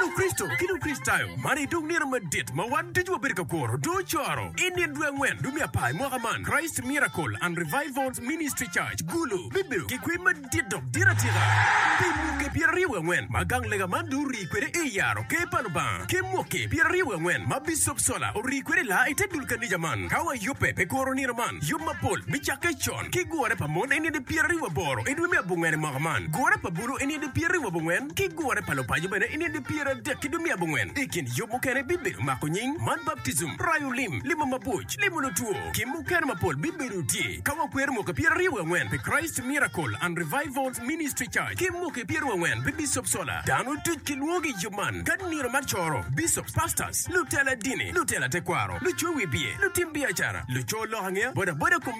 Lukristo ki Lukricitayo, man aye dong nino madit ma wan ducu wabedo ka kuro. Dong ocoro i nino dwe angwen dwe me apar i mwaka man, Christ Miracle and Revival Ministry Church, Gulu, bibedo ki kwee madit dok dit atika. Pi mwaki pyeraryo wiye angwen ma gang lega man dong orii kwede i yaro Ker pa Lubanga, ki mwaki pyeraryo wiye angwen ma Bicop Sola orii kwede i laa i te dul kanija man, ka wayubbe pi kuro nino man, yub mapol bicakke con. ki gure pa mon eni adi pyera riu aboro idwe me abongwen imwaka man, gure pa bulu eni adi pyera riu abongwen, ki gure pa lupaco bene eni adi pyera adek idwe me abongwen. Ikin yub mukene bibedo mako nying, man baptism, rayo lim, limo mabuc, limo lutwo, ki mukene mapol bibedo tye ka wakwero mwaki pyera riu angwen pi Christ Miracle and Revivals Ministry Church ki mwaki pyera riu angwen pi Bishop Sola. Dano duc ki lwongo i yub man ka nino mar coro, Bishops, Pastors, lutela dini, lutela tekwaro, lucowi biye, lutim biacara, luco lok angeya, bodaboda,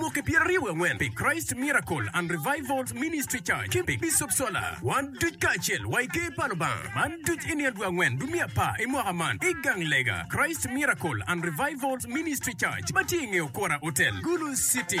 Mwaki pyeraryo wangwen pi Christ Miracle and Revivals Ministry Church ki pi Bishop Sola. Wan duc kacel wa i Ker pa Lubanga. Man duc i nino dwe angwen dwe me apar i mwaka man i gang lega Christ Miracle and Revivals Ministry Church ma tye i nge Okora Hotel, Gulu City.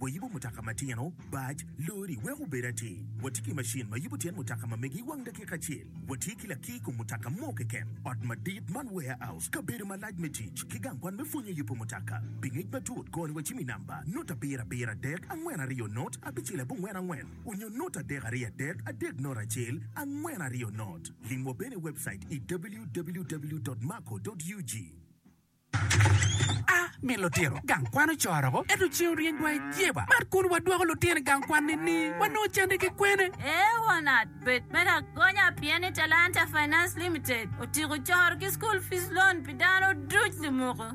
Wayubo mutoka matino, bac, lori wek obed atir. Watye ki macin ma yubo tyen mutoka ma mege i wang dakika acel. Watye ki lakir i kom mutoka mo keken, ot madit man warehouse, kabedo malac me tic, ki gang kwan me pwonyo yubo mutoka. Pi ngec matut, koni wacim i namba, not abiro abiro adek angwen aryo not abicel abongwen angwen, onyo not adek aryo adek adek not acel angwen aryo not. Limwa bene i webcait i www.marco.ug. A Min lutino gang kwan ocoro oko, ento ceng oryeny wa i jeba. Mar kun wadwoko lutino i gang kwan nini? Wanongo canne ki kwene? A Wanat, bed me lagonya pien ni Talanta Finance Limited otyeko coro ki school fees loan pi dano duc limuko.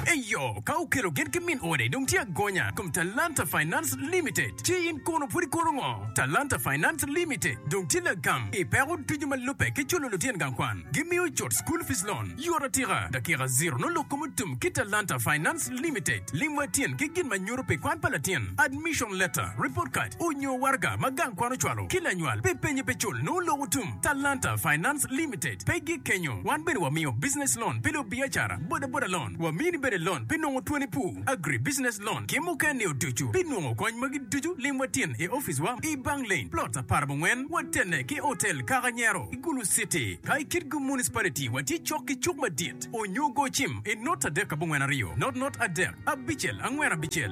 Eyo, ka okelo gen ki min ode dong tye agonya kom Talanta Finance Limited. Ci in kono pud ikono ngo? Talanta Finance Limited dong tye lagam i peko ducu ma lubbe ki culo lutino gang kwan. Gimiyo cut school fees loan. Yot atika, dakika ziro nongo lok kom otum ki Talanta Finance Limited lim wa tyen ki gin ma nyuto pi kwan pa latin, admission letter, report card, onyo waraga ma gang kwan ocwalo ki lanywal pi penye pe cul nongo lok otum. Talanta Finance Limited pe gik kenyo, wan bene wa miyo business loan pi lu biacara, boda boda loan, wa mini bene loan pi nongo twoni pu, agri business loan ki muken ni oducu. Pi nongo kony magi ducu lim wa tyen i office wa i Bang Lane, plot apar bongwen, wa tenne ki hotel Kaka Nyero. Gulu City, ka i Kitgum Municipality wa tye cok ki cuk madit onyo go cim i not adek abongwen aryo, not not adek abicel angwen abicel.